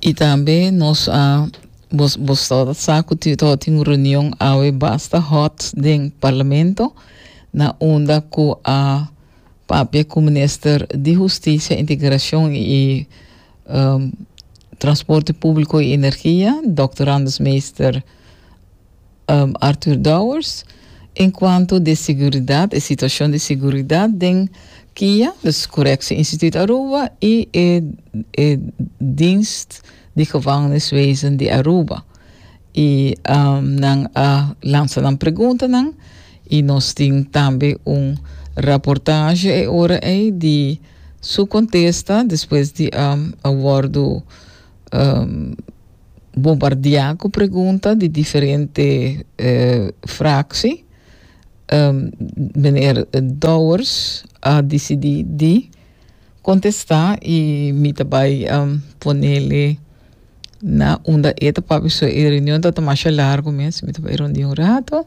Y tambe nos a bos bos todo sa cu ti todo tin reunión awe basta hot den parlamento na unda cu a papia cu minister di Justicia, Integracion y um, Transporte Publico y Energia, Doctor Anders Meester, Arthur Dowers, Enkuanto di siguridat, e situashon di siguridat den kia, dus Koreksie Instituut Aruba i e e Dienst di Gevangeniswezen di Aruba i nan a lansa nan preguntanan i nos tin tambe un raportasje e ora ei di su kontesta despues di a wòrdu bombardiá ku pregunta di diferente fraksi, meneer Dowers a disidí di kontestá i mi ta bai ponele na unda e ta papia. So e reunion tabata masha largu mes, mi ta bai rondí un ratu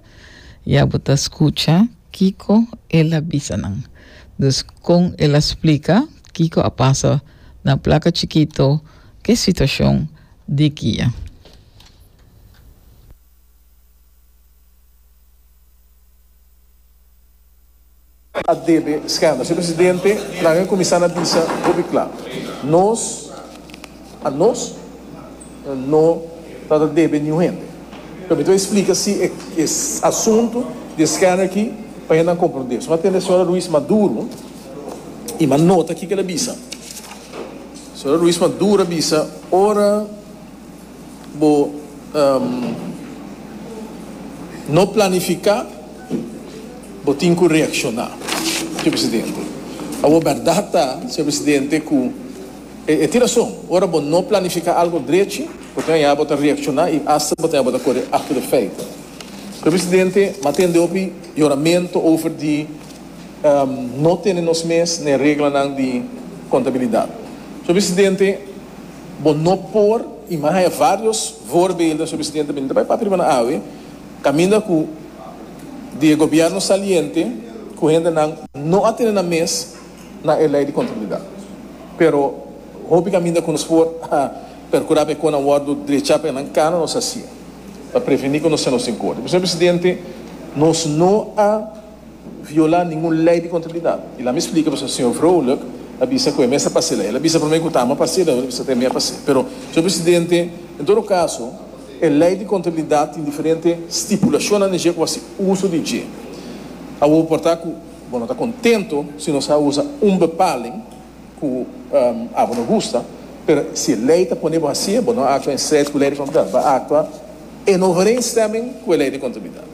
i a bo ta skucha kiko el a bisa nan. Dus kon el a splika kiko a pasa na Plaka Chikito. Ke situashon di kia? a debe skenda. Señor Presidente, nan a cuminsa na bisa hopi cla. Nos, a nos, no ta ta debe niun hende. Pero mi ta wak explica si e e asunto di e skenda aki pa hendenan comprende. Suma tende señora Ruiz Maduro y ma nota kiko el a bisa. Sra. Ruiz Madura bisa ora bo no planifica bo tin cu reacciona, Sr. Presidente. Awor berdad ta, Sr. Presidente, cu e tin rason, ora bo no planifica algo drechi bo tin haña bo ta reacciona y hasta bo tin haña bo ta core acto de feite. Sr. Presidente, m'a tende hopi yoramento over di. no tene nos mes n'e reglanan di contabilidad. Señor Presidente, bo no por imahe varios voorbeelden, Señor Presidente, mi no ta bay papia riba nan awe, caminda cu di e gobierno saliente cu hendenan no a tene nan mes na e ley di contabilidad. Pero hopi caminda cu nos por a percura pa e conan wordo drecha pa nan cana nos haci pa preveni cu nos siña nos tin cor. Señor Presidente, nos no a. viola ningun lei di contabilidad. Y lami splica boso, señor Vrolijk a bisa cu e mester pa haci lei. El a bisa prome cu ta ama pa haci, luego el a bisa cu ta mea pa haci. Pero, señor Presidente, en todo caso, e lei di contabilidad tin diferente stipulacionnan den dje cu bo a haci uso di dje. Awor bo por ta cu bo no ta contento si nos a usa un bepaling, ku abo no gusta pero si e lei ta pone bo hasi e bo no aktua en stret ku e lei di kontumidat bo a aktua en overeenstemming ku e lei di kontumidat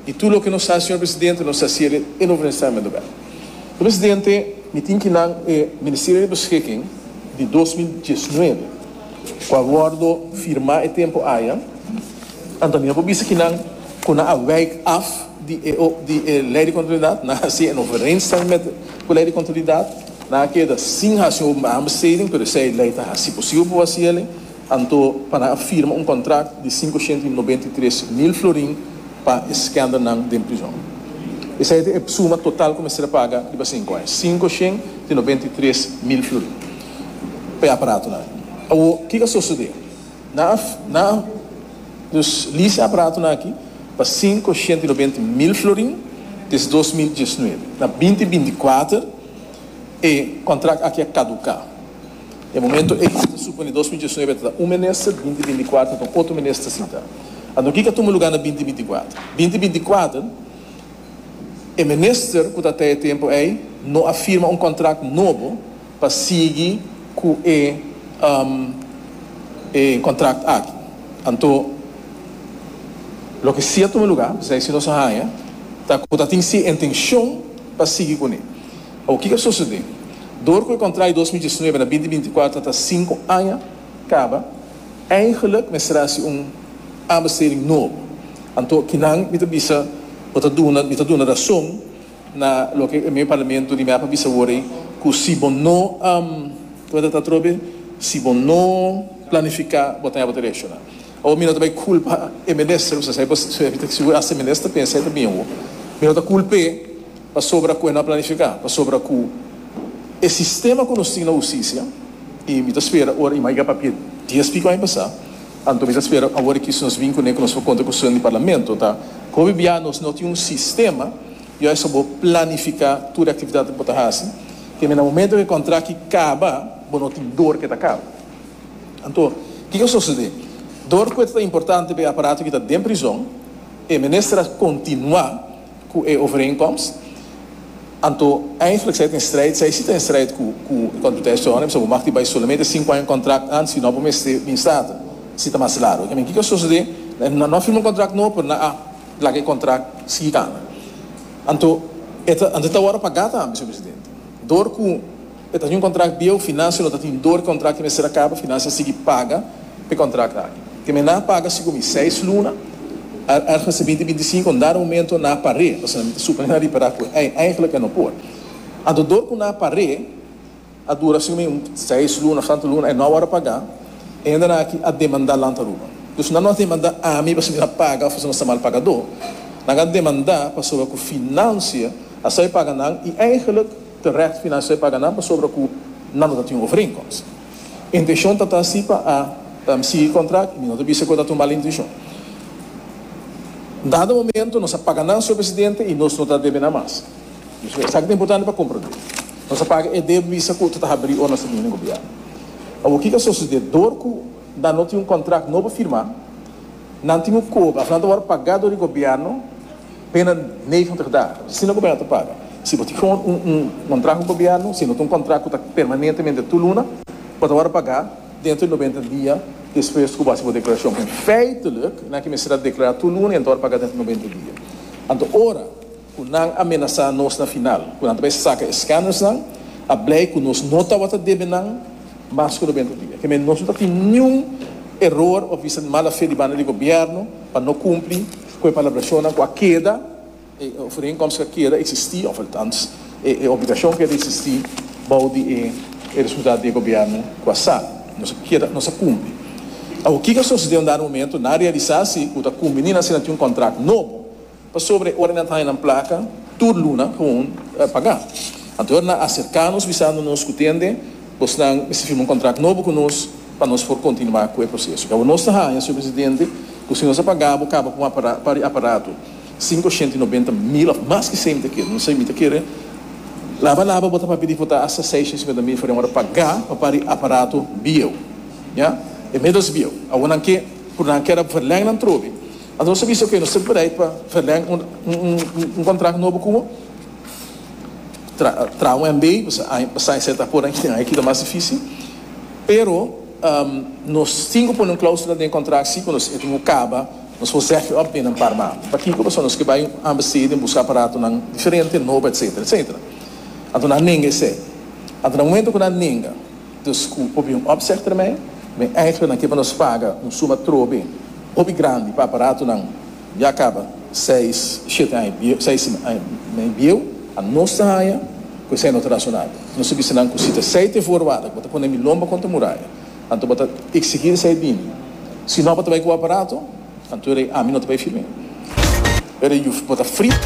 i tur loke nos sa señor presidente nos ta hasi el en overeenstemming do bel señor presidente mi tin ki nan e Ministerio di Beschikking di dos mil diesnuebe ku a wordo firma e tempu aya anto mi no por bisa ki nan ku nan a wijk af di e lei di kontumidat nan a hasi en overeenstemming met ku lei di kontumidat. Nan a keda sin hasi un aanbesteding, pero esei e lei ta hasi posibel pa bo hasi el. Anto, pa nan a firma un kontrakt di sinkoshenta i nobenta i tres mil florin pa e skendernan den prizon. Esei ta e suma total ku mester a paga riba sinku aña, sinkoshenta i nobenta i tres mil florin pa e aparatonan. Awor, kiko a sosodé? Na af, na af. Dus lisa aparatonan aki pa sinku ocienta i nobenta mil florin desde dos mil diesnuebe. Na binti binti kuater e contract aki a caduca. E momento ey si ta supone dos mil diesnuebe a tabata un minister, binti binti kuater tabata un otro minister sinta. Anto kico a tuma lugar na binti binti kuater? Binti binti kuater e minister cu ta ta e tempo ey no a firma un contract nobo pa sigui cu e contract aki. Anto, loke si a tuma lugar, esei si nos a haya, ta cu ta tin si intencion pa sigui cu ne. Awor, kico a sucede? Door cu e contract di dos mil diesnuebe na binti binti cuatro ta cinco aña caba, eigenlijk mester haci un aanbesteding nobo. Anto, kinan mi ta bisa bo ta duna, mi ta duna razon? Na loke e mei parlamento di mea pa bisa awor ei cu si bo no como ta ta atrobe si bo no planifica bo ta hebo derecho na. Awor mi no ta bay culpa e minister pasobra esey pues si bo hasta e minister pensa esey ta bien awor. Mi no ta culp'e pasobra cu e no a planifica pasobra cu e sistema cu nos tin na husticia y mi ta spera ora y maiga papia dies pico aña pasa. Anto mester spera awor e kiss nos bin kuné ku nos por konta ku steun di Parlamento ta hopi bia nos no tin un sistema yo esei bo planifiká tur e aktividat ku bo ta hasi te mester na momento ku e kontrakt ki kaba bo no tin dor ku e ta kaba. Anto kiko a sosodé? Dor ku e ta ta importante pa e aparato ki ta den prizon e mester a kontinuá ku e overeenkomst, anto eindelijk zij in strijd, zij si ta in strijd ku ku e Kontruteshon, e bisa bo mag di bai solamente sinku aña kontrakt antes i no bo mester bin Staten, si ta mas largo. Kende kiko a sosodé, nan no a firma un kontrakt nobo pero nan a laga e kontrakt sigui kanda. Anto, anto ta ora pagá tambe, señor Presidente, dor ku. E ta tin un kontrakt bieu, finansio lo ta tin dor ki kontrakt ta mester a kaba, finansio a sigui paga pa e kontrakt aki. Te me na paga sigu mi seis luna, ergens te binti binti sinku, un dada momento na par'é, pasobra mi ta suponé na ripará ku e eigenlik e no por. Anto dor ku na par'é a dura sigu mi un seis luna of tantu luna, e no a wòrdu pagá, e hendenan aki a demandá Land Aruba. Dus nan no a demandá ami pasobra mi na paga of pasobra nos ta mal pagadó, nan a demandá pasobra ku finansio a sabi paga nan i eigenlik Terecht financier paga nan pasobra cu nan no ta tin overeenkomst. Intencion ta ta si pa a sigui contract y mi no ta bisa cu e ta tumal intencion. Dado momento nos a paga nan, Señor Presidente, y nos no ta debe nan mas. Pasobra esaki ta importante pa comprende. Nos a paga e debe bisa cu ta ta haberi ora nos ta bini den Gobierno. Awor kico a sucede? Dor cu nan no tin un contract no pa firma, nan tin un coba. Asina nan ta word paga dor e Gobierno. Binnen negentig dagen, si nan gobernan ta paga. Si bo tin un un kontrakt ku gobièrnu, si no ta un kontrakt ku ta permanentemente tur luna, bo ta wòrdu pagá dentro di noventa dia despues ku bo hasi bo deklarashon. En feitelijk, nan ke mester a deklará tur luna i nan ta wòrdu pagá dentro di noventa dia. Anto ora ku nan amenasá nos na final ku nan ta bai saka e skandersnan, a blei ku nos no tabata ta debe nan mas ku noventa dia. Kemei nos no ta tin niun eror òf bisa di mala fe di banda di gobièrnu pa no kumpli. Ku e palabrashonnan ku a keda, e overeenkomst ku a keda eksistí, òf althans e obligashon keda eksistí bou di e resultat di e gobièrnu ku a sa, nos a keda, nos a kumpli. Awor, kiko a sosodé unda na momentu nan a realisá si ku ta kumpli ni nan asina tin un kontrakt nobo? Pasobra e ora nan ta haña nan plaka tur luna, gawon pagá. Anto e ora nan aserká nos bisando nos ku tende. Bosnan mester firma un kontrakt nobo ku nos pa nos por kontinuá ku e proseso. Kabaw nos ta haña, señor presidente, ku si nos a pagá bo kaba pa un aparato, par di aparato, sinku shenta i nobenta mil òf mas ki esei mi ta kere. Nos ei mi ta kere laba laba bo ta papia di ku ta asta seis shenta i sinkuenta mil for di ahora pagá pa par di aparato bieu, ya, e middels bieu. Awor nan ke por nan keda ap verlèng nan trobe. Anto nos a bisa, oké, nos ta bereid pa verlèng un kontrakt nobo ku bo. Traho en bay basai ese ta por aña e kita mas difícil pero nos tin cu pone un cláusula den contract si cu nos e tin cu caba nos por zeg op binnen par manda pakico pasobra nos ke bay ambesteden busca aparatonan diferente nobo etcetera etcetera anto nan a nenga ese anto na momento cu nan a nenga dus cu hopi un opzeg termijn den eindelijk nan ke pa nos paga un suma trobe hopi grandi pa aparatonan Ya caba seis, siete aña bieu, seis aña me bieu, a nos ta haya cu esai no ta razonabel. Nos ta bisti nan cu si ta esai te voorwaarde cu bo ta pone mi lomba contra muraya, anto bo ta exigir esai bini. Si no bo ta bay cu bo aparato, anto e rey ami no ta bay firme. E rey Juf, bo ta frit.